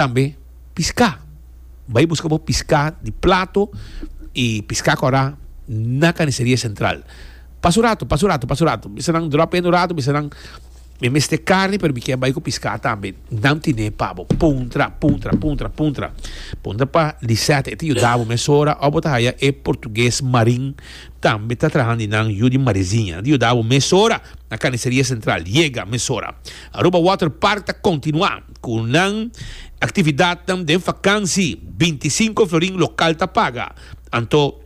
Tambe piská. Bai buska bo piská di plato i piská kòrá na Kaniseria Sentral. Pasa un ratu, pasa un ratu, pasa un ratu. Bisanan dròp hende un ratu, bisanan Mi mester karni, pero mi kier bai ku piská tambe. Nan tine pa bo. Puntra, puntra, puntra, puntra. Puntra pa Lisette, e ta yuda bo mesora òf bo ta haya e portuges Marin tambe ta traha di nan yu di Mariziña. Nan ta yuda bo mesora na Kaniseria Sentral. Yega mesora. Aruba Water Park ta kontinuá. Ku nan aktividatnan den fakansi, bintisinko florin lokal ta paga. Anto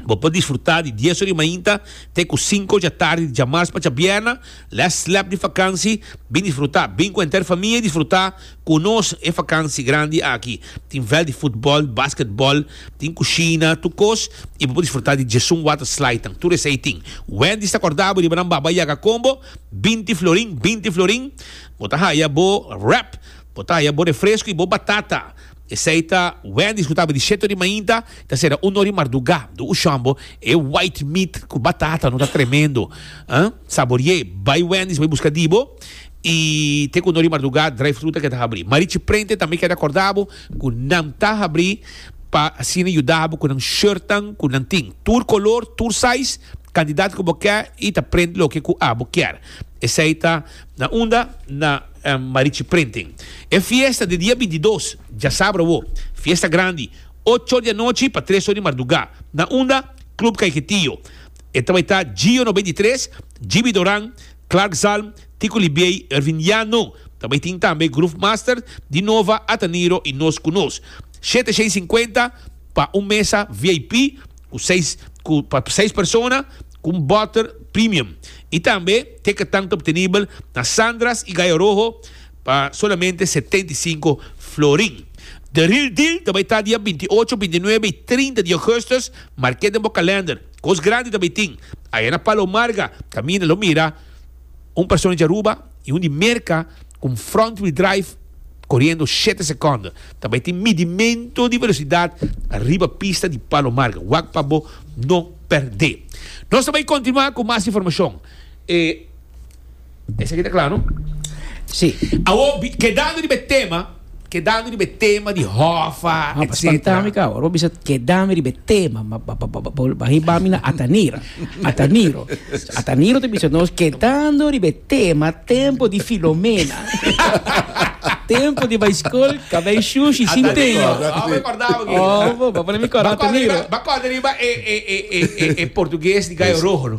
bo por disfrutá di dies ori mainta te ku sinku dja tardi di djamars pa djabièrna, lès slèp di fakansi. Bin disfrutá, bin ku enter famia i disfrutá ku nos e fakansi grandi aki. Tin vèlt di futbòl, basketbòl, tin kushina, tur kos i bo por disfrutá di djesun waterslidenan. Tur esei tin. Wendy's ta kòrda bo riba nan baba yaga kombo, binti florin, binti florin. Bo ta haya bo wrap, bo ta haya bo refresco y bo batata. Esey ta Wendy's cu taba di shete ori mainta ta cera uno ori marduga. Do ushon bo e white meat cu batata no ta tremendo. Saboriee bay Wendy's bay busca di bo y te cu uno ori marduga drive thru ta keda habri. Marichi Prente tambe keda corda bo cu nan ta habri pa asina yuda bo cu nan shirtnan cu nan tin tur color tur size cantidad cu bo ke y ta prent loke cu abo kier. Esey ta. Na unda na Marichi Printing. E fiesta di dia bintidos djasabra awo. Fiesta grandi. Ocho di anochi pa tres or di mardugá. Na unda? Club Caiquetillo. E ta bai ta Gio no beinti tres, Jibi Doran, Clark Zalm, Tico Libiey, Ervin Llano. Ta bai tin tambe Groove Master, Di Nova, Ataniro i nos ku nos. Shete shei sinkuenta pa un mesa VIP ku seis ku pa seis persona. con butter premium y tambe te que tan ta obtenibel na Sandra's y Gallo Rojo pa solamente setenta y cinco florin. The real deal ta bay ta dia bintiocho, bintinuebe y trinta di augustus, marke den bo calendar. Cos grandi ta bay tin. Aya na Palo Marga, caminda lo mira. Un persona di Aruba y un di Merca cu un front wheel drive coriendo shete seconden ta bay tin midimento di velocidad ariba pista di Palo Marga. Wak pa bo no perde. Nos ta bay continua cu mas informacion. E esaki ta cla no? Si. Awor, kedando riba e tema. Kedami riba e tema di hòfa, etcetera. Bo spantá mi ka, ora bo bisa kedami riba e tema, ma bo hiba mi na Atanira, Ataniro. Ataniro ta bisa nos kedando riba e tema tempo di Filomena. Tempo di bai skol, ka bai shushi sin tenjo. Aw mi kòrda bo ki. Bo pone mi kòrda Ataniro. Bo kòrda riba e portugues di Gayo Rojo lo.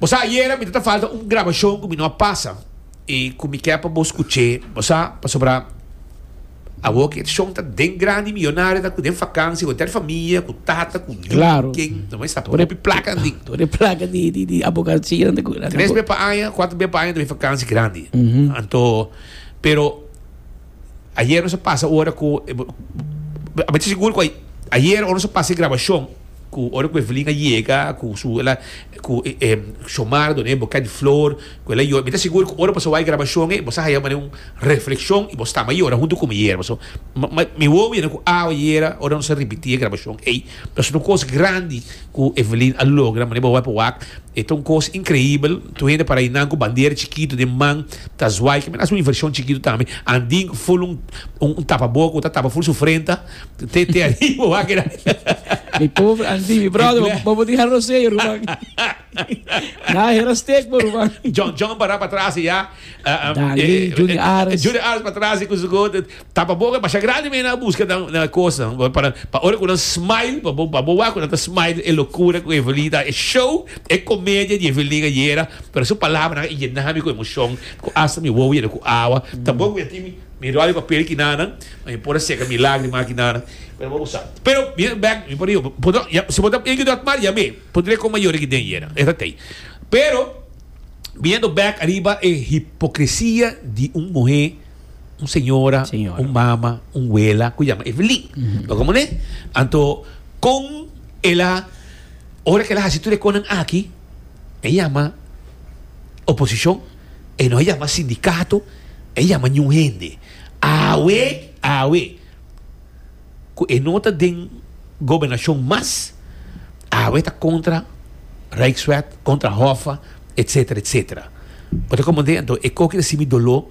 Bo sa, ayera mi ta ta falta un grabashon ku mi no a pasa i ku mi ke pa bo skuch'é. Bo sa, pasobra awor ku e shon ta den grandi, miyonario ta ku den fakansia ku hotèl familia, ku tata, ku yu, ku ken, no mester ta hopi plaka nin. Tur e plaka di abogatsianan ta ku nan. Tres be pa aña, kuater be pa aña ta bin fakansia grandi. Anto, pero. Ayer nos a pasa ora ku e a mester sigur ku ayer ora nos a pasa e grabashon ku ora ku Evelyn a yega ku su el a ku e Xiomara a duna e buket di flor ku el a yora mi ta sigur ku ora bo a wak e grabashon ei bo sa haya mane un reflekshon i bo stamba yora huntu ku mi ayer pasobra mi wowo yanda ku awe ayer ora nos a ripití e grabashon ei. Ta su un kos grandi ku Evelyn a logra, manera bo bai pa wak. E ta un kos inkreibel. Tur hende parainan ku bandera chikitu den man ta zwai. Kimin as un invershon chikitu tambe. Andin ful un un tapaboka ku ta tapa ful su frenta te te ariba bo a keda. Mi pobre Andin, mi bròder, bo bo por diha rosei ruman. Na hera stek bo ruman. John John para patras ya. Dali, Judy Ares. Judy Ares patras ku su go. Tapa boca masha grandi me na busca na cosa nan para pa ora cu nan smile pa bo pa bo wak cu nan ta smile e locura cu Evelyn ta e show e comedia di Evelyn ayera pero su palabranan a yena mi cu emocion cu hasta mi wowo yena cu awa ta bon cu ya tin mi mi rol di papel aki nan ma mi por a seca mi lagrima aki nan pero bo bo sa pero mi a bek mi por a yo si bo ta bai dot mar yame por direct con mayor aki den yera e ta tey pero biendo bek ariba e hipocresia di un muhe. un señora, un mama, un wela cu yama Evelyn. No como ne? Anto, con ela, ora que ela haci tur e conan aki, e yama oposicion, e no yama sindicato, e yama niun hende. Awe, awe, cu e no ta den gobernacion mas, awe ta contra Rijkswet, contra Hoffa, etcetera, etcetera. Bo ta comprende? Anto, e coki ta si mi dolor.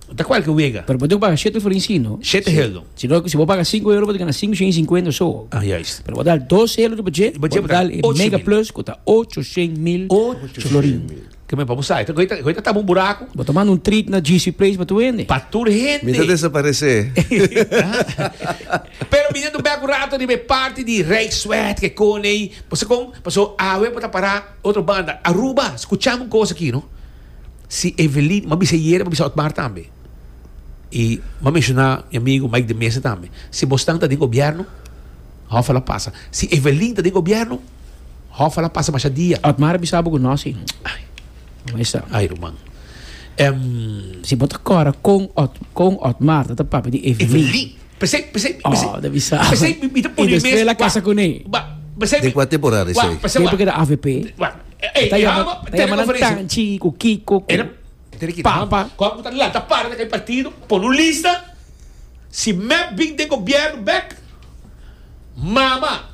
Ta cualke wega. Pero bo tin cu paga shete florin si no. Shete heldo. Si no, si bo paga sinku euro bo ta gana sinku shen i sinkuenta so. Ah, juist. Pero bo ta dal dos heldo riba dje, bo ta dal e mega plus cu ta ocho shen mil florin. Ocho shen mil. Kimen pa bo sa. Hoy ta tapa un buraco. Bo ta manda un treat na GC Place pa tur hende. Pa tur hende. Mi ta desaparece. Pero mi dento bek un rato riba e parti di Rijksweg ke con ei. Bo sa con? Paso awe bo ta para otro banda. Aruba, scuchamu un cosa aki no. Si Evelyn, m'a bisa yere, m'a bisa Otmar tambe. I m'a menshoná mi amigu Mike de Mesa tambe. Si Bostan ta den gobièrnu, hòf a la pasa. Si Evelyn ta den gobièrnu, hòf a la pasa masha dia. Otmar a bisa bo ku nos i no e sa. Ai ruman. Em. Si bo ta kòrda kon kon Otmar ta ta papia di Evelyn. Evelyn. P'esei, p'esei, p'esei. Oh, ta bisa. P'esei mi ta pudi mes. I despues la kasa kuné. Wa, p'esei. Den kua temporada esei? Tempu ku e ta avp. Wa. E ta yama ta yama nan Tanchi ku Kiko ku Papa. Kon ku ta lata para den e partido pone un lista si mep bin den gobierno bek Mama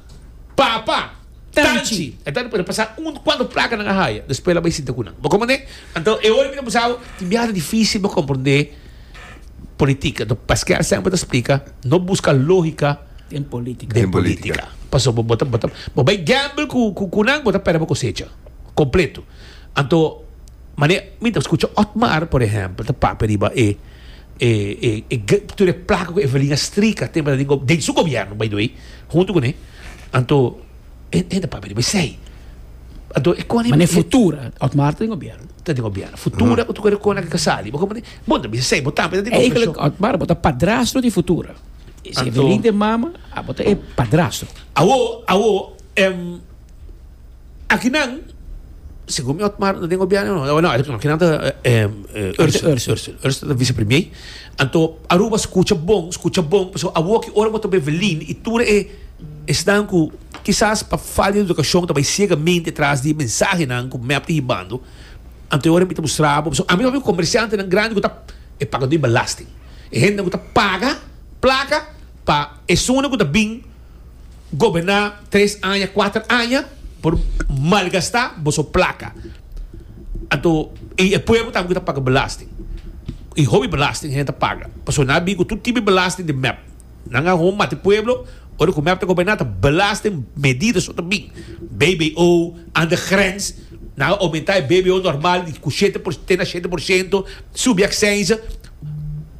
Papa Tanchi e ta por a pasa un kuatro placanan a haya despues la bai sinta ku nan bo kon manera anto e ora mi ta bisa bo tin biaha ta dificil bo comprende politica anto paskea semper ta explica no busca logica den politica pasobra bo ta bo ta bo bay gamble cu cu cu nan bo ta perde bo cosecha completo anto mane mi ta scucha otmar por ehempel ta papia riba e e e e tur e placa cu evelin a strica te bra den su gobierno by the way hunto cune anto e e ta papia riba esey anto e con mane futura otmar ta den gobierno ta den gobierno futura cu tucora e con aki ta sali bo comprende bo ta bisa esey bo tambe ta den confesion otmar bo ta padrastro di futura. Si e feliz den mama, abo ta e padrastro. Awo, awo, em, akinan, segun mi Otmar, no den gobierno no, awo no, akinan ta, em, eh, Ursula, Ursula. Ursula, Ursula ta vicepremier. Anto, Aruba scucha bon, scucha bon, pasobra awo aki ora bo ta Evelyn y tur e esnan cu kisas pa falta di educacion ta bay ciegamente tras di e mensahenan cu mep ta hibando, anto e ora mi ta mustra bo, pasobra ami ta hopi comerciantenan grandi cu ta, e pagador di belasting. E hende ku ta paga plaka pa esungunan ku ta bin goberná tres aña, kuater aña por malgastá boso plaka. Anto i e pueblo tambe ku ta paga belasting. I hopi belasting hende ta paga. Pasobra nan a bin ku tur tipo di belasting den mep. Nan a hopi mati pueblo ora ku mep ta goberná ta belasting medida so ta bin. BBO, aan de grens, nan a oumentá e BBO normal di ku shete por te na shete por shento, subi aksense.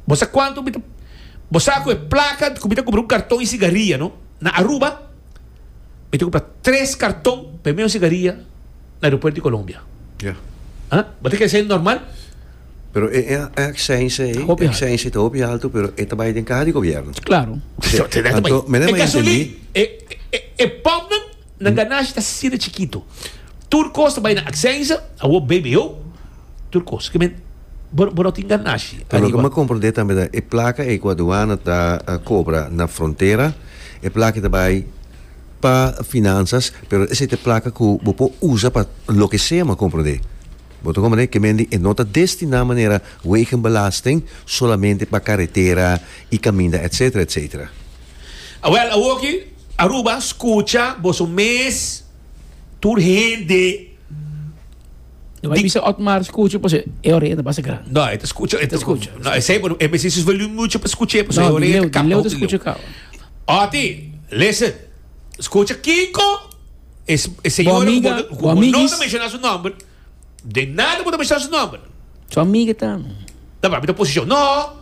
Bo sa kuantu mi ta Bo sa ku e plaka ku mi ta kumpra un karton i sigaria no? Na Aruba mi ta kumpra tres karton pa e mesun sigaria na aeropuerto di Colombia. Ya. Ha? Bo ta kere esei normal? Pero e, e, e aksènsia ei, Hopi altu. aksènsia ei ta hopi altu, pero e ta bai den kaha di gobièrnu. Klaro. Anto, menen E ma yenten gasolin, di. e, e, e, e pòmpnan Na ganashi ta asisí na chikitu. Tur kos ta bai na aksensa, awor BBO, tur kos. Ke men, bo, bo no tin ganashi Pero loke ariba. m'e komprendé tambe ta e plaka ei ku aduana ta kobra na frontera, e plaka ta bai pa finansas, pero esei ta e plaka ku bo por usa pa loke sea, m'e komprendé. Bo ta komprendé? Ke men di e no ta destiná manera wegenbelasting solamente pa karetera i kaminda etsetera, etsetera. Awel awor ki Aruba scucha boso mes tur hende. No bay bisa Otmar scucha paso e orea ta basa grandi. No e ta scucha e ta scucha. No e say e mester si volume mucho pa scucha paso e orea ta capa hopi di leu. Oti listen scucha Kiko e señor bo no ta menciona su nomber. Den nada bo ta bisa su nomber. Su amiga ta. Ta papia ta oposicion. No.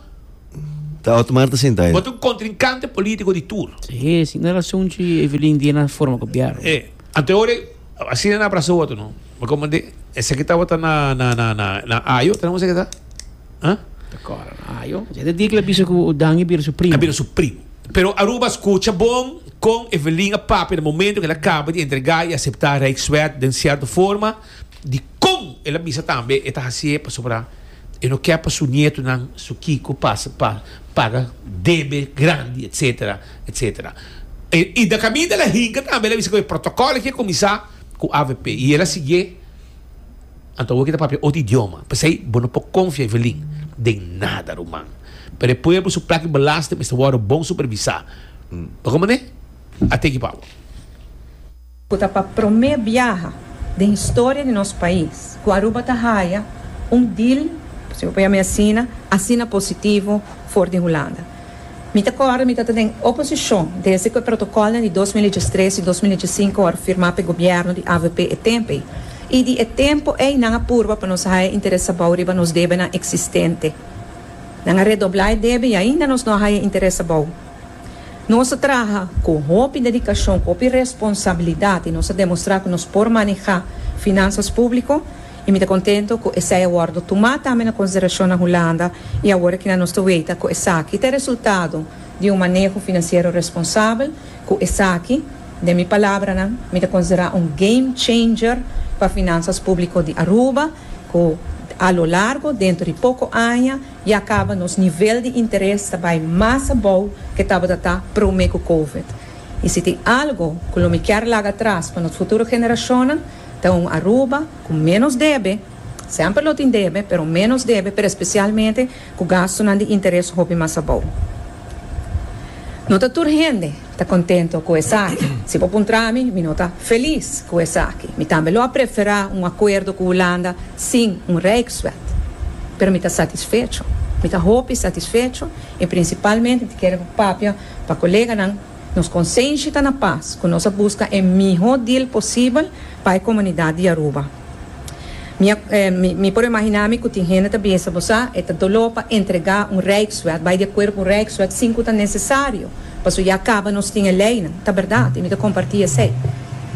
Ta Otmar ta sinta ayi. Bo ta un contrincante politico di tur. Si, si na razon cu Evelyn di e na forma gobierno. E. Anto e ora asina e na abrasa otro no. Bo comande esaki tabata na ayo, tenemos esaki ta. Ah? Ta kòrda no. Ah, yo. Yende di ku lo bisa ku Odan a bira su primu. A bira su primu. Pero Aruba a skucha bon kon Evelin a papia den momentu ku el a kaba di entregá i aseptá Rijkswet den sierto forma di kon el a bisa tambe e ta hasié pasobra e no ke pa su nietonan, su kiko, pasa pa paga debe grandi, etsetera, etsetera. E Ida kaminda el a hinka tambe el a bisa ku e protokòl aki a kuminsá ku avp i el a sigié. Anto awor ke ta papia otro idioma. P'esei bo no por konfia Evelyn den nada, ruman. Pero e pueblo su plak di belasting mester wòrdu bon supervisá. Pa kon manera? A teki pa bo. Cu ta pa promé biaha den historia di nos pais cu Aruba ta haya un deal, si bo por yama asina, asina positivo for di Hulanda. Mi ta kòrda mi tabata den oposishon desde ku e protokòlnan di dos mil i diestres i dos mil i diesinko wòrdu firmá pa e gobièrnu di avp e tempu ei. I di e tempu ei nan a purba pa nos a haña interes abou riba nos debenan eksistente. Nan a redoblá e debe i ainda nos no a haña interes abou. Nos a traha ku hopi dedikashon, ku hopi responsabilidat i nos a demostrá ku nos por manehá finansas públiko. I mi ta contento cu esey a wordo tuma tambe na consideracion na Hulanda y awor aki nan nos ta weta cu esaki ta e resultado di un maneho financiero responsabel cu esaki, den mi palabranan, mi ta considera un game changer pa finanzas publico di Aruba cu a lo largo, dentro di poco aña, ya caba nos nivel di interes ta bay mas abou ke tabata ta prome cu covid. Y si tin algo cu lo mi kier laga atras pa nos futuro generacionnan, Ta un Aruba cu menos debe, semper lo tin debe, pero menos debe, pero especialmente cu gastonan di interes hopi mas abou. No ta tur hende ta contento cu esaki. Si bo puntra mi, mi no ta feliz cu esaki. Mi tambe lo a prefera un acuerdo cu Hulanda sin un Rijkswet. Pero mi ta satisfecho. Mi ta hopi satisfecho y principalmente mi ta kere papia pa coleganan. Nos konsenshi ta na pas ku nos a buska e mihó dil posibel pa e komunidat di Aruba. Mi a, mi por imaginá mi ku tin hende ta bisa bo sa, e ta doló pa entregá un rijkswet, bai di akuerdo ku un rijkswet sin ku ta nesesario, paso ya kaba nos tin e leinan. Ta bèrdat i mi ta kompartí esei.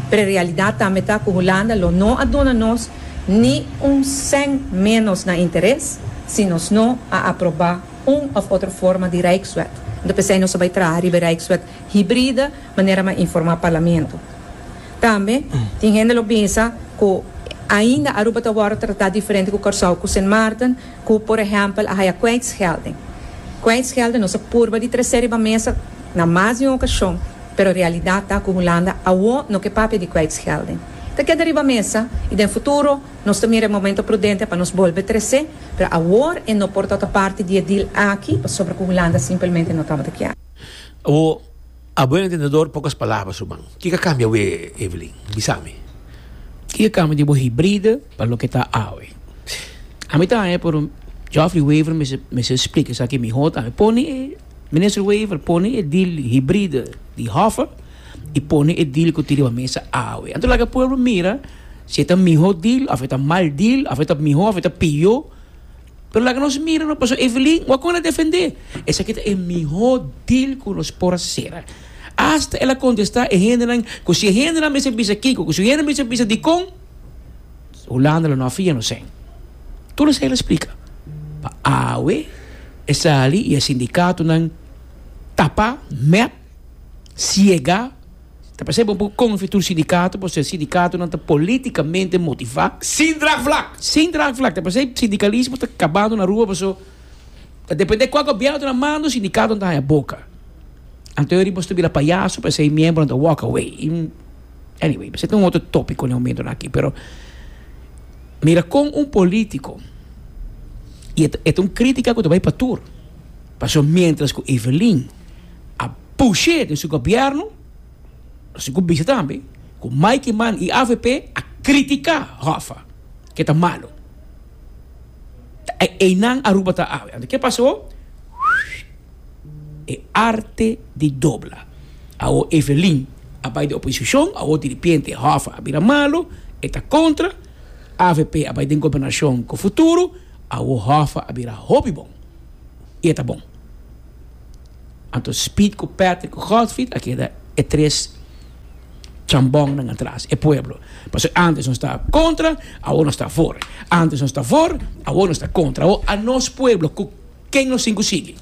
Pero e realidat tambe ta ku Hulanda lo no a duna nos ni un sèn ménos na interes si nos no a aprobá un of otro forma di Rijkswet. Anto p'esei nos a bai traha riba e Rijkswet hibride manera m'a informá Parlamento. Tambe tin hende lo bisa ku ainda Aruba ta wòrdu tratá diferente ku Kòrsou ku Sint Maarten ku por ehèmpel a haya kwijtschelding. Kwijtschelding nos a purba di tres'é riba mesa na mas di un okashon, pero realidat ta ku Hulanda awor no ke papia di kwijtschelding. Ta keda riba mesa i den futuro. Nos ta mira e momento prudente pa nos bolbe tres'é, pero awor e no por tabata parti di e deal aki pasobra ku Hulanda simpelmente no tabata kier. Awor, a buen entendedor, pocas palabras ruman. Kiko a cambia awe, Evelyn? Bisa mi. Kiko a cambia di bo hibride pa loke ta awe? Ami ta haña pero Geoffrey Wever mester splica esaki miho tambe. Pone e, Minister Wever, pone e deal hibride di Hoffa. i pone e dil ku tin riba mesa awe. Anto laga pueblo mira si e ta mihó dil òf e ta mal dil, òf e ta mihó òf e ta piyó. Pero laga nos mira no, pasobra Evelyn wak kon a defendé. Esaki ta e mihó dil ku nos por asera. Asta el a kontestá e hendenan ku si e hendenan mester bisa kiko, ku si e hendenan mester bisa dikon, Hulanda lo no a fia nos sen. Tur esei el a splika. Pa awe e sali i e sindikatonan tapa, mèt. siega, ta p'esei bo por konfia tur sindikato pasobra sindikatonan ta politikamente motivá, Sin draagvlak! sin draagvlak, ta p'esei sindikalismo ta kabando na rua paso ta dependé kua gobièrnu ta na mando sindikatonan ta haña boka. Anto yori bo stubila payaso p'esei miembronan ta walk away i anyway p'esei ta un otro tópiko na e momentonan aki pero mira kon un polítiko i e ta un krítika ku ta bai pa tur paso miéntras ku Evelyn a push'é den su gobièrnu, así ku bisa tambe ku Mike Mann i avp a kritiká Hoffa ke ta malu. Einan Aruba ta awe. Anto ke pasó? E arte di dobla. Awor Evelyn a bai den oposishon, awor di ripiente Hoffa a bira malu, e ta kontra, avp a bai den gobernashon ku futuro, awor Hoffa a bira hopi bon i e ta bon. Anto Speed ku Patrick ku Godfried a keda e tres chambonnan atras, e pueblo. Pasobra antes nos ta kontra, awor nos ta afor. Antes nos ta afor, awor nos ta kontra. Awor a nos pueblo ku ken nos tin ku sigui?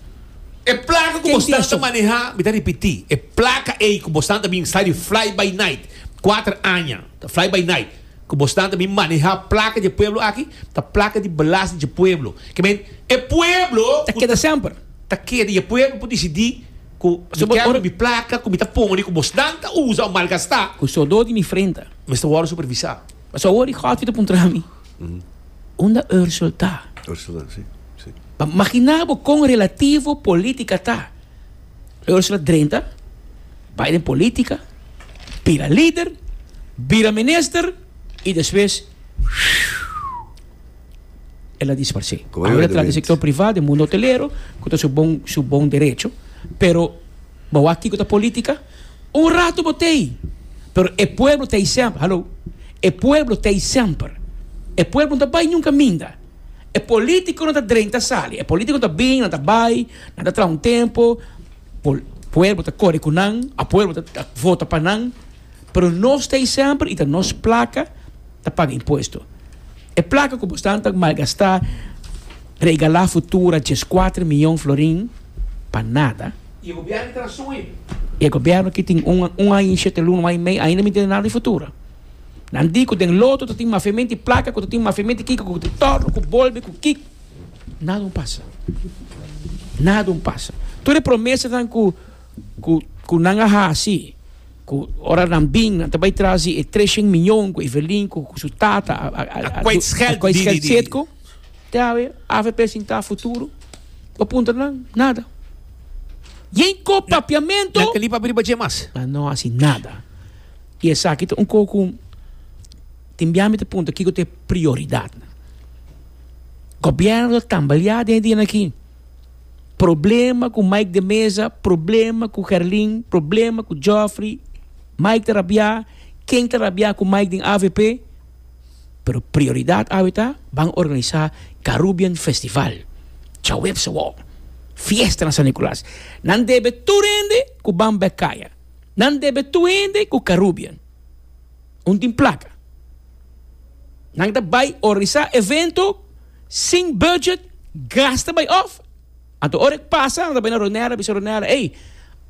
E plaka ku bosnan ta manehá, mi ta ripití, e plaka ei ku bosnan ta bin sai di Fly-by-Night, kuater aña ta Fly-by-Night. Ku bos nan ta bin manehá plaka dje pueblo aki, ta plaka di belasting dje pueblo. Ke men, e pueblo. Ta keda semper. Ta keda i e pueblo por disidí ku mi kèmbra mi plaka ku mi ta pone ku bos nan ta usa o malgastá. Ku sudó di mi frenta. Mester wòrdu supervisá. Pasobra awor i Godfrey ta puntra mi, Unda Ursel ta? Ursel ta, sí, sí. Pa maginá bo kon relativo polítika ta Ursula drenta bai den politica, bira lider, bira minister y despues el a disparse. Como Ahora el a trata sector privado, de mundo hotelero, cu ta su bon, su bon derecho, pero bawa kico ta politica, un rato bo tey, pero e pueblo tey semper, hallo, e pueblo tey semper, e pueblo no ta bai nunca minda. E politiconan ta drenta sali, e politico ta bini, nan ta bai, nan ta traha un tempo, pol, pueblo ta core cu nan, a pueblo ta, ta vota pa nan, pero nos ta esember y ta nos placa ta paga impuesto. E placa cu bosnan ta malgasta, regala futura diescuater miyon florin pa nada. Y e gobierno ki tin razon ey. Y e gobierno ki tin un, un aña y shete luna, un aña y mei, ainda mi tene nada di futura. Nan di cu den loto ta tin mafiamento y placa cu ta tin mafiamento y kiko cu ta torno cu bolbe cu ki. Nada un pasa. Nada un pasa. Tur e promesanan cu cu cu nan a haci cu ora nan bin nan ta bay tras di e treshen miyon cu Evelyn cu cu su tata a a a a kwijtscheld di di di di. Te a we avp sin ta futuro? Bo puntra nan? Nada. Yen ko papiamento? Nan ta lipa riba dje mas. Nan no haci nada. I esaki ta un kos ku tin bia mi ta puntra kiko ta e prioridatnan. Gobierno ta tambaleá den e dianan akí. Problema ku Mike de Meza, problema ku Gerlin, problema ku Geoffrey, Mike ta rabiá, ken ta rabiá ku Mike den avp, pero prioridat awe ta ban organisá Carubbean Festival, Chaweb Sawó, fiesta na San Nicolas. Nan debe tur hende ku ban bek kaya. Nan debe tur hende ku Carubbean. Un tin plaka. Nan ta bai orisá evento sin budget, gas ta bai òf. Anto ora e pasa nan ta bai na Ronel a bisa Ronel, ey,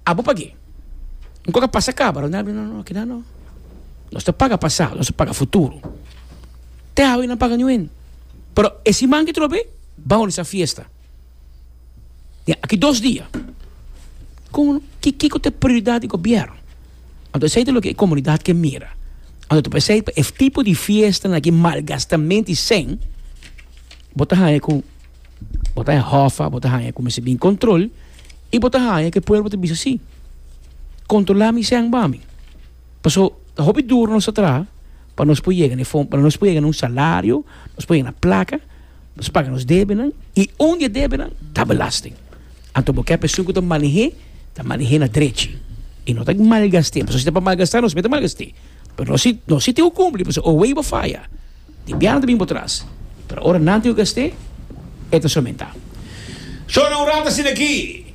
abo pag'é. Un kos a pasa kaba. Ronel a bisa, no, no, kinan no. Nos ta paga pasado, nos ta paga futuro. Te awe nan paga niu hende. Pero e siman ki trob'é, ban orisá fiesta. Ya, aki dos dia. Kon, ki, kiko ta e prioridad di gobierno? Anto esei ta loke e comunidad ke mira. Anto ta pa esei, pa e tipo di fiestanan aki, malgastament di sen, bo ta haña ku bo ta hòffa, bo ta haña ku mester bin control i bo ta haña ku e pueblo ta bisa si, controla mi sen ba mi. Paso, ta hopi duro nos ta traha pa nos por yega na e fon, pa nos por yega na un salario, nos por yega na plaka. Nos paga nos debenan i un di e debenan ta belasting. Anto bo ke persoon ku ta maneh'é ta maneh'é na drechi i no ta malgast'é, pasobra si ta pa malgastá nos mester malgast'é. Pero no si no si tin ku kumpli pasobra owei bo faya tin bianan ta bin bo tras, pero ora nan tin ku gast'é e ta somentá. Shona un rata asina aki.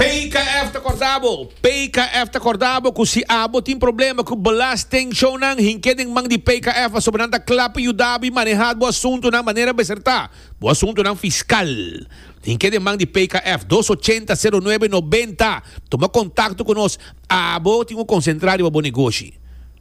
PKF ta korda bo. PKF ta korda bo ku si abo tin problema ku belastingshownan, hink'é den man di PKF asobo nan ta kla pa yuda bo i maneha bo asuntunan manera besertá. Bo asuntunan fiskal, hink'é den man di PKF, dos ochenta, sero nuebe, nobenta. Tuma kontakto ku nos. Abo tin un konsentrá riba bo negoshi.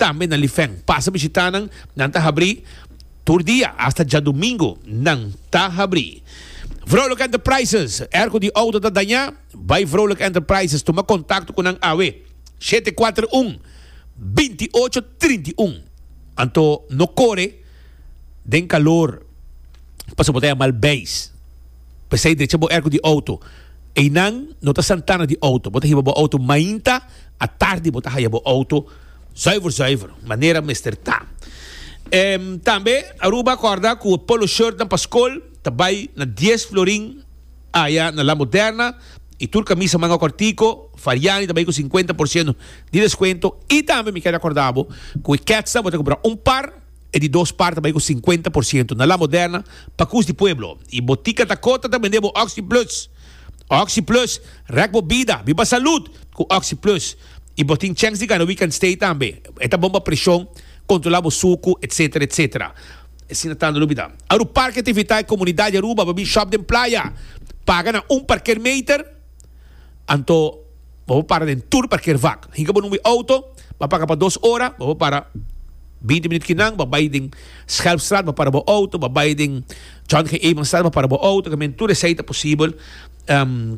Tambe na Lifeng pasa bishitá nan, nan ta habrí tur dia hasta djadumingu nan ta habrí. Vrolijk Enterprises, er ku di outo ta dañá, bai Vrolijk Enterprises tuma kontakto ku nan awe, shete kuater un, binti ocho trinta i un. Anto no kore den kalor pasobra bo ta yamal beis. P'esei drecha bo er ku di outo. Einan no ta santana di outo, bo ta hiba bo outo mainta, atardi bo ta haya bo outo. Zuiver zuiver manera mester ta. Ehm tambe Aruba corda cu e polo shirtnan pa scol ta bay na dies florin aya na La Moderna y tur camisa manga cortico Fariani ta bay cu cincuenta por ciento di descuento y tambe mi keda corda bo cu e ketsnan bo ta compra un par e di dos par ta bay cu cincuenta por ciento na La Moderna pa cus di pueblo y Botica Dakota ta bende bo Oxi Plus Oxi Plus rek bo bida biba salud cu Oxi Plus. y bo tin checks di gana week and stay tambe. E ta bon pa presion, controla bo sucu, etc. Etc. Asina tando lo bida. Aru Parke Tivita e comunidad di Aruba bo bin shop den playa, paga na un parker meter, anto bo bo para den tur parker vak. Hinca bo numbi auto, bo a paga pa dos ora, bo bo para binti minuut kinan, bo a bay den Schelpstraat bo para bo auto, bo a bay den John G. Evenstraat bo para bo auto, caminda tur esai ta posibel.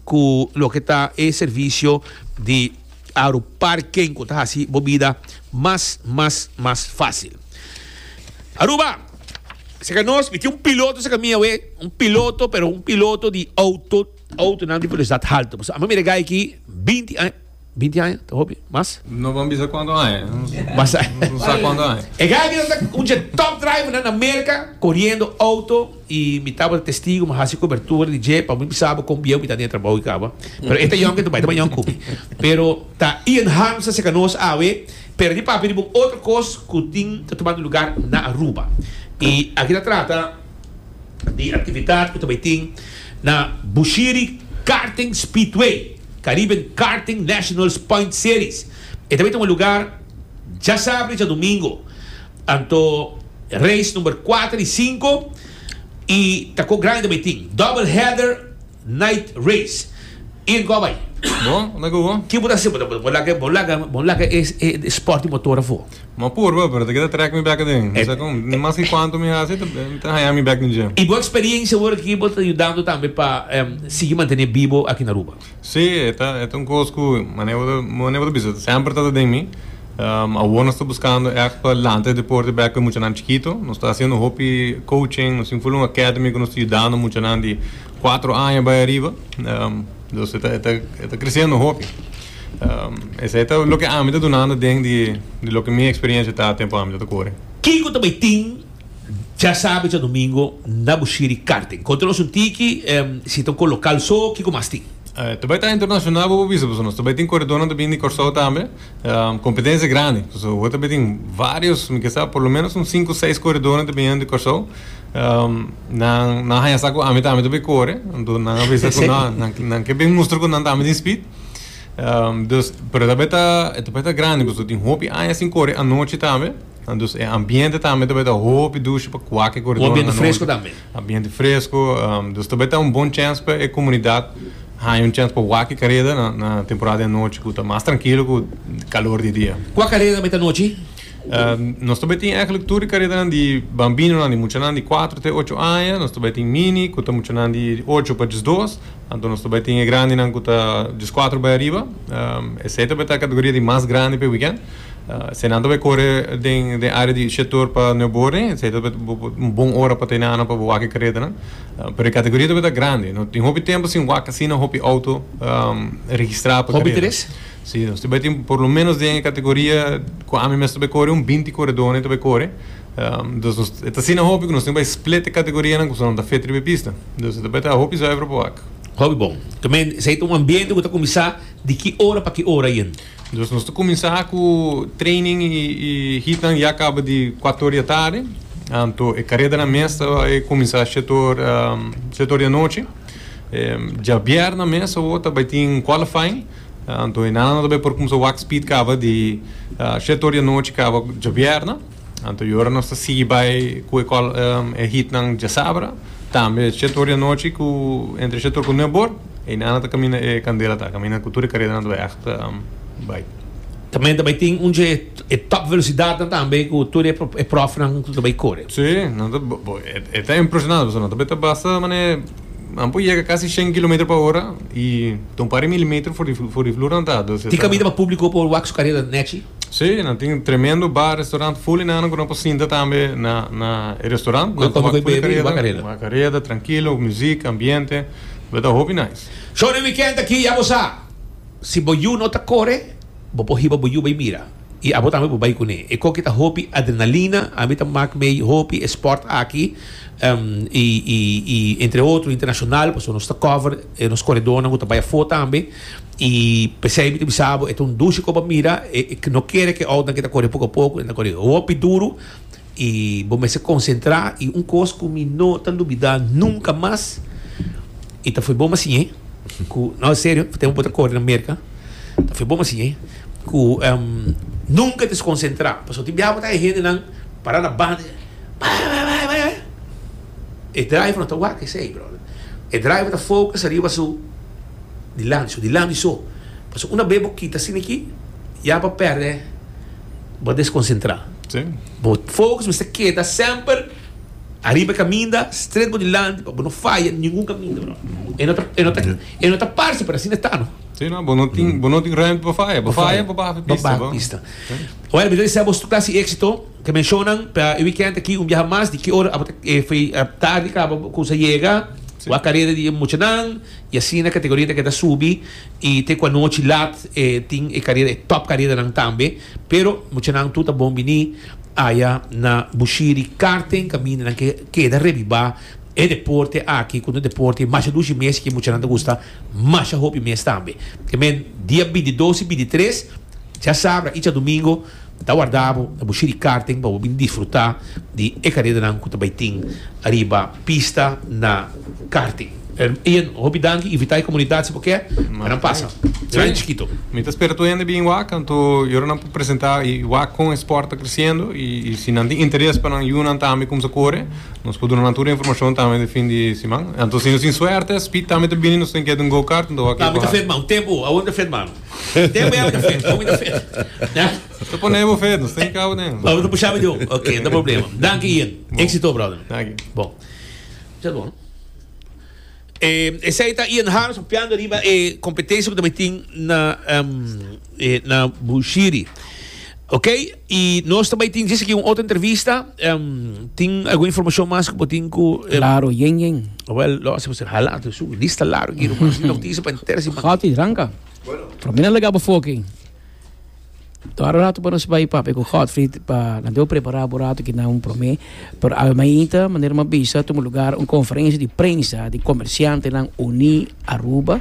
cu loke ta e servicio di Aruparking cu ta haci bo bida mas mas mas facil. Aruba! Seca nos, mi tin un piloto seca mi awe, un piloto pero un piloto di auto, autonan di velocidad halto. Pues amo mi regay aki binti aña. Binti aña ta hopi. Mas? No ban bisa kuantu aña. No sa kuantu aña. E guy aki ta un dje top drivernan na Merka, koriendo outo, i mi tabata testigu, mi a hasi kobertura di dje pa mi bisa bo kon bieu mi ta den e trabou i kaba. Pero e ta yòn ku e ta bai ta bai yòn ku mi. Pero ta Ian Harmstra seka nos awe, pero di papia di bo un otro kos ku tin ta tumando lugar na Aruba. I aki ta trata. di actividad cu ta bay tin na Bushiri Karting Speedway, Caribbean Karting Nationals Point Series. E ta bay tuma lugar djasabra y djadomingo. Anto race number cuater y cinco y ta cu grandi ta bay tin. Double header. Night race y go bay. Bo na go go? Ki bo ta haciendo? Bo laga bo laga bo laga e e sport di motor afo? Bo apurba bo pero ta keda track mi bek aden. Mi sa con ni mas ki cuanto mi haci ta mi ta haya mi bek den gym. Y bo experiencia awor aki bo ta yudando tambe pa sigui mantene bibo aki na Aruba? Si e ta e ta un cos cu mane bo ta mane bo ta bisa semper ta ta den mi. Awor nos ta buscando echt pa lanta e deporte bek pa e muchanan chikito. Nos ta haciendo hopi coaching, nos tin full un academy cu nos ta yudando muchanan di. Cuatro aña bay ariba, dus e ta crecendo hopi. Esey ta loke ami ta dunando den di loke mi experiencia ta tempo ami ta ta core. Kico ta bay tin djasabe djadomingo na Bushiri Karting? Conta nos un tiki, si ta un cor local so, kico mas tin? Ta bay ta internacional bo bo bisa pasobra nos ta bay tin coredornan ta bini di Corsou tambe. Competencia grandi, pasobra bo ta bay tin varios, mi ke sa por lo menos un cinco seis coredornan ta bini di Corsou. Um, nan, nan haña sa cu ami tambe ta bay core. Entonces nan a bisa cu nan, nan, nan ke bay mustra cu nan tambe tin speed. Um, dus, pero ta bay ta, e ta bay ta grandi, pues lo tin hopi aña sin core anochi tambe. En dus e ambiente tambe ta bay ta hopi dushi pa cuake coredor Un ambiente anochi. fresco tambe. Ambiente fresco, um, dus ta bay ta un bon chance pa e comunidad haña un chance pa wak e careda na, na temporada di anochi cu ta mas trankilo cu calor di dia. Cua careda ta bay ta anochi? Nos ta bai tin eigenlijk tur e karedanan di bambinonan, di muchanan di kuater te ocho aña. Nos ta bai tin mini ku ta muchanan di ocho pa diesdos. Anto nos ta bai tin e grandinan ku ta dieskuater bai ariba. Esei ta bai ta e kategoria di mas grandi pa e wikènt. Esei nan ta bai kore den den e área di Shetor pa Nuevo Borne. Esei ta bai un bon ora pa ta e nana pa bai wak e karedanan. Pero e kategoria ta bai ta grandi. No tin hopi tempu sin wak asina hopi outo registrá pa e kareda. Si, nos ta bai tin por lo menos den e kategoria ku ami mes ta bai kore un binti koredónan e ta bai kore. Dus nos, e ta asina hopi ku nos tin ku bai split e kategorianan kusnenan ta fit riba e pista. Dus e ta bai ta hopi zuiver pa wak. Hopi bon. Tambe esei ta un ambiente ku ta kuminsá di ki ora pa ki ora yen? Dus nos ta kuminsá ku training i hitnan ya kaba di kuatu ora di atardi. Anto e karedanan mes ta bai kuminsá shete or shete or di anochi. Djabièrna mes awor ta bai tin qualifying. Anto e nana ta bay por kumsa wak speed kaba di shet or di anochi kaba djabièrnè. Anto e ora nos ta sigui bay ku e hitnan djasabra. Tambe shet or di anochi ku entre shet or ku nueb or e nana ta kaminda e kandela ta kaminda ku tur e karedanan ta bay ègt bay. Tambe ta bay tin un dje e top velosidatnan tambe ku tur e profnan ta bay kore. Sí, nan ta bo e ta impresionante pasobra nan ta bay ta basta manera. Nan por yega casi shen kilometer pa ora y ta un par di milimeter for di for di vloer nan ta. Tin cabida pa publico por wak su careda nechi? Sí, nan tin tremendo bar, restaurant full y nan nan cu nan por sinta tambe na na e restaurant. Nan ta wak full di careda, wak careda trankilo, muziek, ambiente, lo ta hopi nice. Show di weekend aki, ya bo sa. Si bo yu no ta core, bo por hiba bo yu bay mira. I abo tambe por bai kuné. E koki ta hopi adrenalina, ami ta mak mei hopi e sport aki, i i entre otro internacional, pasobra nos ta cover e nos corredornan cu ta bai afo tambe, i pesey mi ta bisa bo e ta un dushi coba mira, e no kere cu e outnan cu ta corre poco a poco, nan ta corre hopi duro. I bo mester konsentrá i un kos ku mi no ta lubidá nunka mas i ta for bon masiñé ku, no, en serio, pa tempu bo ta kore na Merka, ta for bon masiñé ku nunka deskonsentrá. Pasobra tin biaha bo ta haña hendenan pará na banda i bai, bai, bai, bai, bai. E driver no ta wak esei, bròder. E driver ta fokus ariba su dilanti, su dilanti so. Pasobra una bes bo kita asina aki, ya bo a pèrdè. bo a deskonsentrá. Sí. Bo fokus mester keda semper ariba e kaminda, stret bo dilanti pa bo no faya ningun kaminda, bro. E no ta, e no ta, e no ta parse, pero asina ta, no? Sí, no, bo no tin, bo no tin ruimte pa faya. Bo faya, bo baha pa e pista, Baha bo. pista. Wel, mi ta desea bo su klase éksito. Ta menshonan pa e wikènt aki un biaha mas di ki ora abo ta e fi a tardi kaba bo kusa yega. Sí. Bo a kareda di e muchanan i asina kategoria ta keda subi. Y te cu anochi laat e tin e carera, e top careranan tambe. Pero muchanan tur ta bon bini aya na Bushiri Karting caminda nan ke keda rebiba e deporte aki cu no deporte masha dushi mes y ke muchanan ta gusta masha hopi mes tambe. Te men dia bintidos y bintitres djasaabra y djadumingo Ta warda bo na bo shirikaarten pa bo bin disfrutá di e karedanan ku ta bai tin ariba pista na karting. Ian, un hopi danki. Invitá e komunidat si bo ke, pa nan pasa. Gran i chikito. Mi ta spera tur hende bin wak kantu i ora nan por presentá i wak kon e sport ta kresiendo. I si nan tin interes pa nan yunan tambe kumsa kore, nos por duna nan tur e informashon tambe den fin di siman. Anto si nos tin suerte, Speed tambe ta bini, nos ta den keda un go-kart, anto wak e ku haas. Tambe ta fetmá un tempu. Awor mi ta fetmá? Te bo yawina fed, yawina fed. Ya? Ta pone emo fed, nos ta hinka bo den. Bo ta pusha mi di un. Ok, no ta problema. Danki Ian. Exito brother. Danki. Bon. Cha ta bon no? E esei ta Ian Harms papiando riba e competencia cu ta mitin na na Bushiri. Ok, y nos ta bay tin djis aki un otro entrevista. Um, tin algun informacion mas cu bo tin cu... em, Claro, yen, yen. Wel, lo hacemos en hala, tu su lista largo aquí, romans, mi noticia pa entera si man. Gotti, ranca. Pero mira lega bo foki. Tora rato pa nos bay papi cu Godfrey pa na deo prepara bo rato ki na un prome. Pero Almeida, manera mi a bisa, tuma lugar un conferencia di prensa di comerciantenan uní Aruba,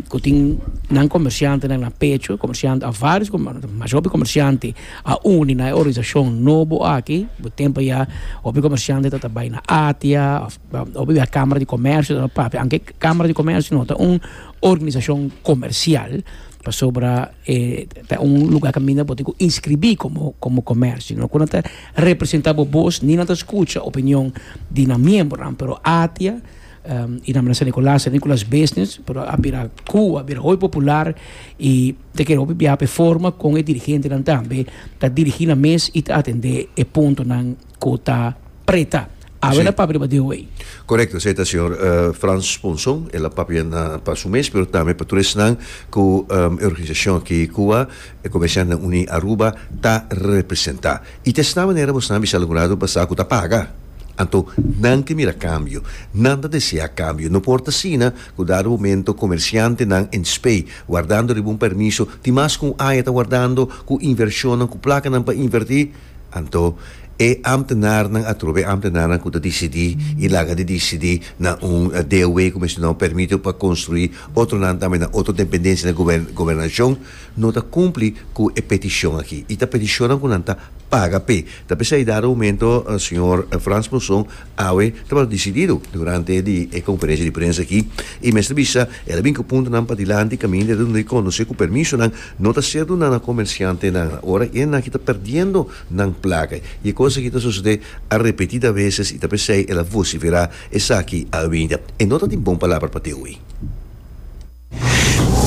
cu tin nan comerciantenan na pecho, comerciante, a varios comerciante, masha hopi comerciante a uni na e organizacion nobo aki, bo tempo a ya hopi comerciante tabata bai na ATIA, of hopi a camara di comercio tabata papia, aunke e camara di comercio no ta un organizacion comercial, pasobra e ta un lugar caminda bo tin cu inscribi como comercio, no cu nan ta representa bo bos ni nan ta skucha opinion di nan miembernan pero atia e namenan San Nicolas San Nicolas Business pero a bira Cuba a bira hoy popular y ta kere hopi biaha p'e forma con e dirigentenan tambe ta dirigi nan mes y ta atende e puntonan cu ta preta. Awe na papia riba di e wey. Korekto, esei ta señor Frans Ponson, el a papia pa su mes pero tambe pa tur esnan ku e organisashon aki ku a e Komersiantnan Uní Aruba ta representá. I ta esnan manera bo sabi Sala Gurado basá ku ta paga. Anto nan ke mira kambio, nan ta deseá kambio. No por ta asina ku dado momento komersiantenan en Spei wardando riba un permiso tin mas ku un aña ta wardando ku invershonnan ku plakanan pa invertí. Anto, e ambtenarnan a trobe ambtenarnan ku ta disidí i laga di disidí na un DW ku mencioná un permito pa konstruí otronan tambe na otro dependensia di gobernashon no ta kumpli ku e petishon aki i ta petishonnan ku nan ta paga p'e. Ta p'esei dado momento señor Frans Mousson Awe tabata disidido durante di e konferensia di prensa aki i mester bisa el a bin ku puntonan pa dilanti kaminda el a duna e konosé ku permisonan no ta ser duna na komersiantenan na ora i esnan aki ta perdiendo nan plaka i e kos aki ta sosodé a repetida veses i ta p'esei el a vosiferá esaki a Avenida e no ta tin bon palabra pa Theo ei.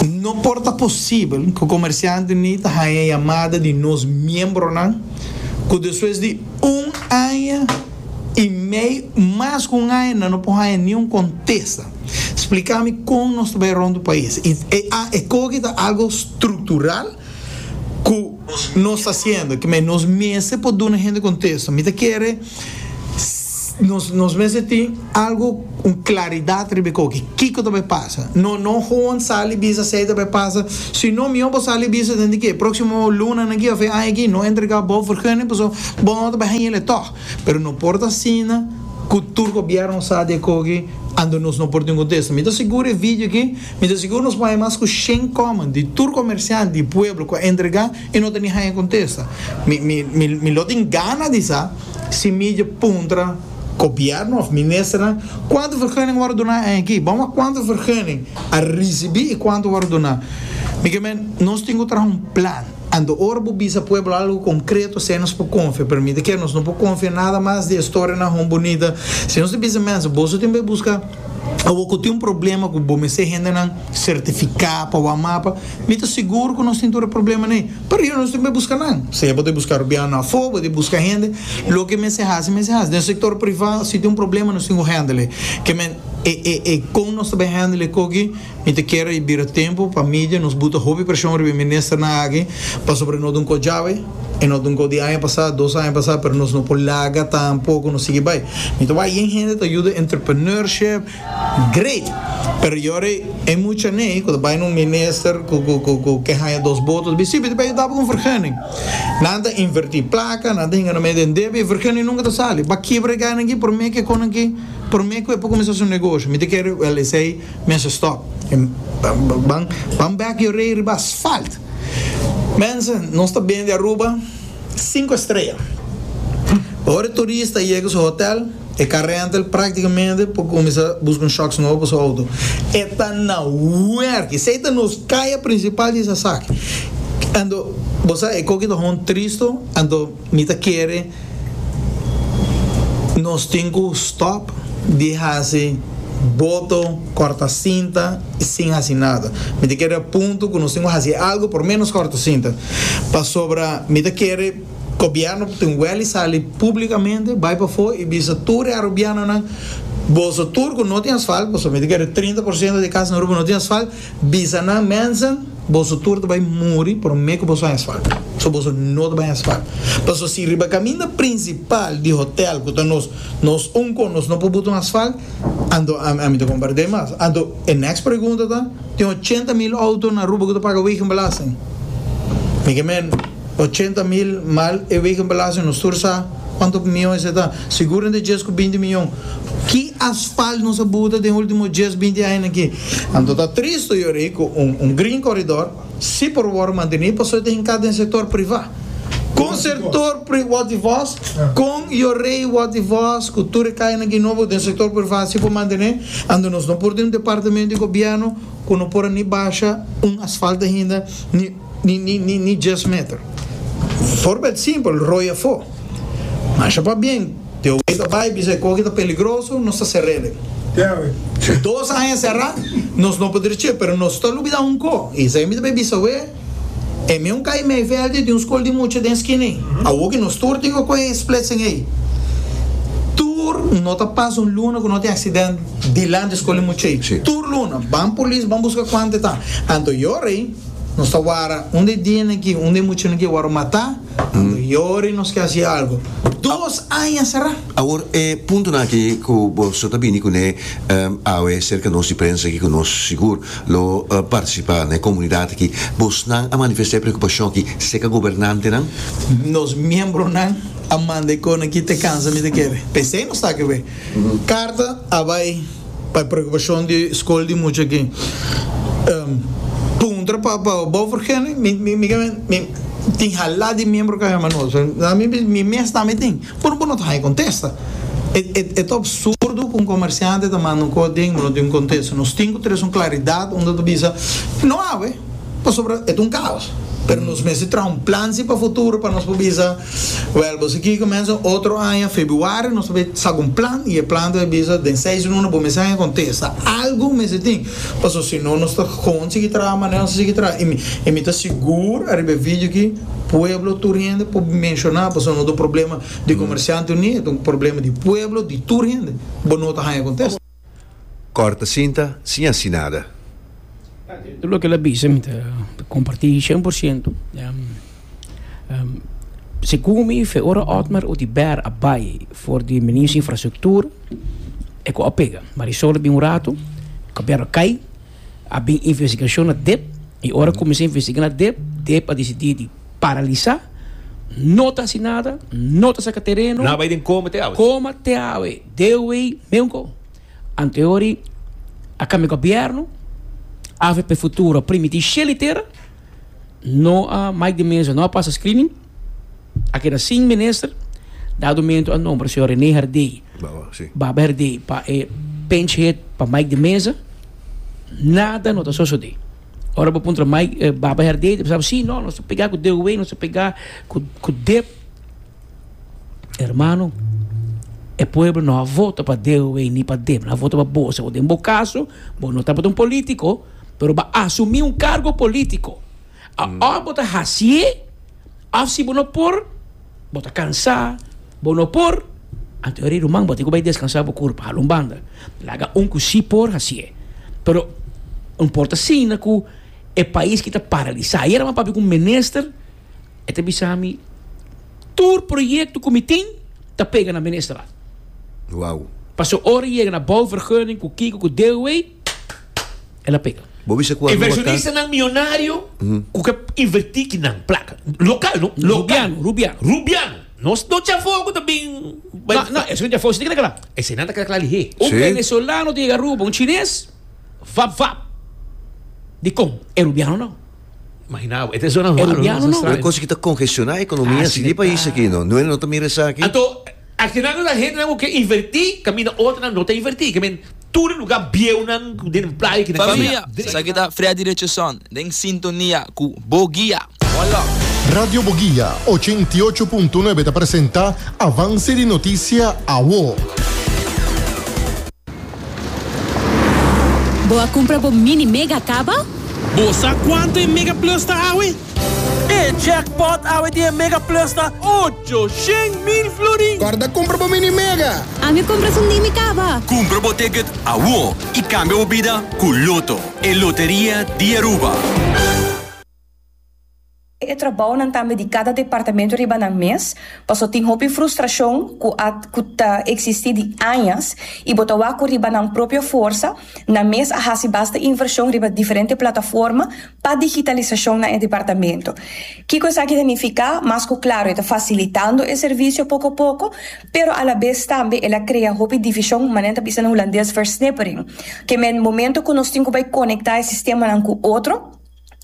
No por ta posibel ku komersiantenan ta haña yamada di nos miembronan ku despues di un aña i mei mas ku un aña nan no por haña niun kontesta. Spliká mi kon nos ta bai rònt pais. E koki ta algu struktural ku. Nos ta hasiendo kime? Nos mester por duna hende kontesto. Mi ta kere nos nos mester tin algu, un klaridat riba e koke. Kiko ta bay pasa? No, no hoan sali bisa esei ta bay pasa. Sino mihó bo sali bisa den di ke próksimo lunanan aki òf e aña aki. No entrega bo vergunning, pasobra bo no ta bay haña el etò. Pero no por ta asina cu tur gobierno sa di a coge ando nos no por tin contesta. Mi ta seguro e video aki, mi ta seguro nos bay mas cu shen comment di tur comerciante y pueblo cu a entrega y no ta ni haya contesta. Mi, mi, mi, mi lo tin gana di sa si mi dje puntra gobierno of ministernan cuanto vergunning worde dona a aki. Bo mira cuanto vergunning a ricibi y cuanto worde dona. Mi ke men nos tin cu traha un plan. Anto ora bo bisa pueblo algo konkreto esei nos por konfia, pero mira ke nos no por konfia nada mas di e storianan hon bunita. Si nos ta bisa mensa boso tin bai buska awor ku tin un problema ku bo mester hendenan sertifiká pa wak mapa, mi ta sigur ku nos tin tur e problemanan ei. Pero yahora nos tin bai buska nan, sea bo ta buska rubiano afó, bo ta buska hende, loke mester hasi mester hasi. Den sektor privá si tin un problema nos tin ku hendel ei. Ke men e e e kon nos ta bai hendel e koki. Mi ta kere i bira tempu pa media nos buta hopi presion riba e ministernan aki pasobra no dun kos djawe i no dun kos di aña pasá, dos aña pasá pero nos no por laga tampoco nos sigui bai. Mi ta wak yen hende ta yuda entrepreneurship great pero yori e muchanan ei cu ta bai na un minister cu cu cu cu ke haña dos botonan ta bisti biba yudaba cu un vergunning. Nan ta inverti placa, nan ta hinga na media debe i e vergunning nunca ta sali. Ba kibra e gana aki prome ke con aki prome cu e por cuminsá su negoshi. Mi ta kere, well esei. Mense stop en ban ban bek yo rei riba asfalt. Mense nos ta bende Aruba sinku estrea. Ora e turist ta yega su hotel e ka renta el praktikamente por kuminsá buska un shocks nobo pa su outo. E ta na werk. Esei ta nos kaya prinsipal di esaki. Anto bo sa e koki ta hon tristo anto. Mi ta kere nos tin cu stop di haci boto, corta cinta y sin haci nada. Mi ta kere a punto cu nos tin cu haci algo por menos corta cinta. Pasobra mi ta kere gobierno tin wel y sali publicamente bay pafo y bisa tur e arubianonan boso tur cu no tin asfalt, pasobra mi ta kere trinta por ciento di e casa na Aruba no tin asfalt, Bisa nan, Mensen, boso tur ta bai muri prome ku boso hesba, so boso no ta bai hesba. Paso si riba kaminda prinsipal di hotel ku ta nos nos un kon nos no por buta un asfalt, anto ami ta kompart'é mas. Anto e next pregunta ta, Tin ochenta mil outo na Aruba ku ta paga wegenbelasting? Mi ke men. Ochenta mil mal e weken belasting nos tur sa cuanto mion esei ta, sigur entre dies cu binti mion. Ki asfalt nos a buta den ultimo dies, binti añanan aki? Anto ta tristo yori cu un green corridor si por worde manteni pasobra ta hinca den sector priva. Con sector pri, wat di vos? Con yorei wat di vos cu tur e cayanan aki nobo den sector priva si por mantene? Anto nos no por tin un departamento di gobierno cu no por a ni basha un asfalt ainda ni. ni djes meter. Forbeld simpel, roi afó. Masha pa bien, te oí ta bai bisa e koki ta peligroso, nos ta ser'elen. Dos aña será, nos no por drech'é, pero nos ta lubidá un kó, i esei mi ta bai bisa'wé, e meun kai Meiveldi tin un skol di mucha den skina ei. Awor ku nos tur tin ku kohe e splitsing ei, tur no ta pasa un luna ku no tin aksident dilanti e skol di mucha ei. Tur luna, ban polis, ban buska kuantu e ta. Anto e ora ei. Nos ta wara unda e dianan aki, unda e muchanan aki wòrdu matá, ando yori nos ke hasi algu. Dos aña será. Awor e puntonan aki ku bo so ta bini kuné awe serka nos di prensa aki ku nos sigur lo partisipá na e komunidat aki, bosnan a manifestá e preokupashon aki serka gobernantenan? Nos miembronan a manda e konan aki te kansa mi ta kere. P'esei nos ta aki awe. Karta a bai. Pa e preokupashon di skol di mucha aki puntra pa Beaufort Genry mi kende mi tin hala di miembro Caja Manolo so na mi bisa mi mes tambe tin pero bo no ta haña contesta e ta absurdo cu un comerciante ta manda un cosa den bo no tin un contesta nos tin cu tres un claridad unda ta bisa no awe pasobra e ta un caos pero nos mester traha un plan si pa futuro pa nos por bisa Wèl, bo siki kumensa otro aña febuario nos ta bay sak un plan i e plan ta bay bisa den seis luna bo mester haya kontesta algu mester tin paso si no nos ta kon sigi traha manera nos a sigi traha i mi i mi ta sigur ariba e video aki pueblo tur hende por menshona paso no ta un problema di komersiante uní e ta un problema di pueblo di tur hende bo no ta haya kontesta. Corta cinta sin haci nada. Tur loke el a bisa mi ta comparti cien por ciento. Segun mi fe ora Otmar Oduber a bay for di minister infrastructuur e cu a pega. Marisol a bin un rato, cabiar a cay. A bin investigashon na dep, i ora kuminsá investigá na dep, dep a disidí di paralisá, no ta hasi nada, no ta saka tereno. Nan a bai den koma te awe. Koma te awe. Deowei meunko. Anteori a kambia gobièrnu, avp Futuro primití sheli tera. No a Mike di Meza no a pasa screening. A keda sin minister. Dado mento a nombra señor Rene Herdey, Baba Herdey, pa e pinch hit pa Mike di Meza. Nada no ta sosode. Ora bo puntra Mike, eh, Baba Herdey, ta bisa, si, no, nos ta pega ku DOW, nos ta pega ku, ku dep. Hermano, e pueblo no a vota pa DOW ni pa dep. No a vota pa bo. Bo den bo kaso, bo no tabata un politico. pero bo a asumí un kargo polítiko. Aos bo ta hasié òf si bo no por, bo ta kansá, bo no por, anto e rei ruman bo tin ku bai deskansá bo kurpa. Hala un banda. Laga un ku sí por hasié. Pero un por ta signa ku e pais ki ta paralisá. Ayera mi a papia ku un minister, e ta bisa mi, Tur proyekto ku mi tin ta pega na ministerat. Wou. Pasobra ora yega na bouvergunning, ku kiko, ku deelwee. el a pega. Bo bisa ku Aruba ka. nan mionario ku ke inverti ki nan plaka. Lokal no. Rubiano, Rubiano. Rubiano. No no chafo ku ta bin bai. No, no, esnan chafo si ta keda kla. Esenan ta keda kla lihé. Si. Un venezolano ta yega Aruba, un chines, vap vap. Dikon? E rubiano no. Imaginá bo, e ta zona raro. E rubiano no. Un kosa ki ta kongestioná ekonomia si di pais aki no. No ta mira esaki. Anto. Asina nos a hendenan cu ke inverti caminda otronan no ta inverti. Ke men tur e lugar bieunan cu den playa aki nan ta Familia, esaki ta Freddy Richardson den sintonia cu Bo Guia. One love. Radio Boguia, ochenta i ocho punto nuebe ta presenta Avance di Noticia Awo. Bo a cumpra bo Mini Mega caba? Bo sa cuanto e Mega Plus ta awe? E jackpot awe di e Mega Plus ta ocho shen mil florin! Guarda compra bo mini Mega! A mi compra esun di mi caba! Cumpra bo ticket awor y cambia bo bida cu Lotto, e loteria di Aruba. E trabounan tambe di cada departamento riba nan mes, paso tin hopi frustracion cu a cu ta existi di añas y bo ta wak cu riba nan propio forsa, Nan mes a hasi basta invershon riba diferente plataforma pa digitalisashon na e departamento. Kiko esaki ta nifiká? Mas ku Claro e ta fasilitando e servisio poko a poko, pero alabes tambe el a krea hopi divishon, manera nan ta bisa na hulandes versnippering, ke men momento ku nos tin ku bai konektá e sistemanan ku otro,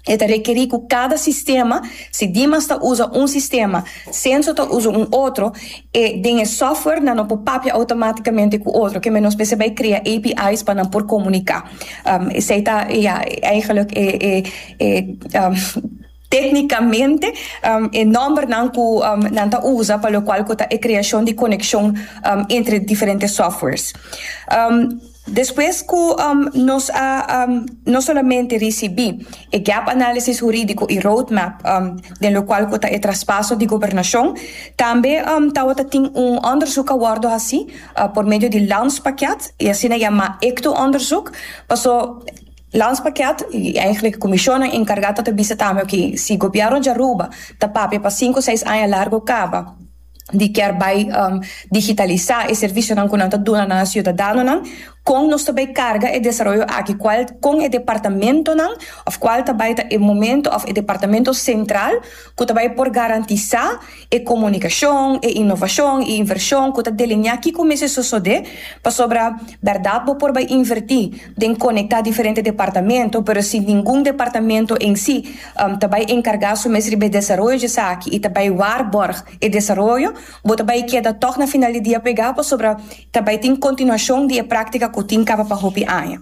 E ta rekerí ku kada sistema, si Dimas ta usa un sistema, Censo ta usa un otro, e den e software nan no por papia automátikamente ku otro, keme nos mester bai krea API's pa nan por komuniká. Esei ta ya eigelijk e e e téknikamente e nòmbernan ku nan ta usa pa lokual ku ta e kreashon di konekshon entre diferente softwares. Despues cu nos a no solamente ricibi e Gap Análisis Hurídico y Roadmap den locual cu ta e traspaso di gobernacion, tambe tawata tin un onderzoek a wordo haci por medio di Landspakket, e asina yama ecto-onderzoek, paso Landspakket, y eigenlijk Comisionnan Encargá ta ta bisa tambe, oké, si Gobierno di Aruba ta papia pa sinku seis aña largu caba, di kier bai digitalisá e servisionan ku nan ta duna nan siudadanonan, kon nos ta bai karga e desaroyo aki, kual kon e departamentonan òf kual ta bai ta e momentu òf e departamento sentral ku ta bai por garantisá e komunikashon, e inovashon, e invershon ku ta delineá kiko mester sosodé pasobra bèrdat bo por bai invertí. den konektá diferente departamento, pero si ningun departamento en si ta bai enkargá su mes riba e desaroyo di esaki i ta bai waarborg e desaroyo, bo ta bai keda tòg na final di dia pregá pasobra ta bai tin kontinuashon di e práktika ku tin kaba pa hopi aña.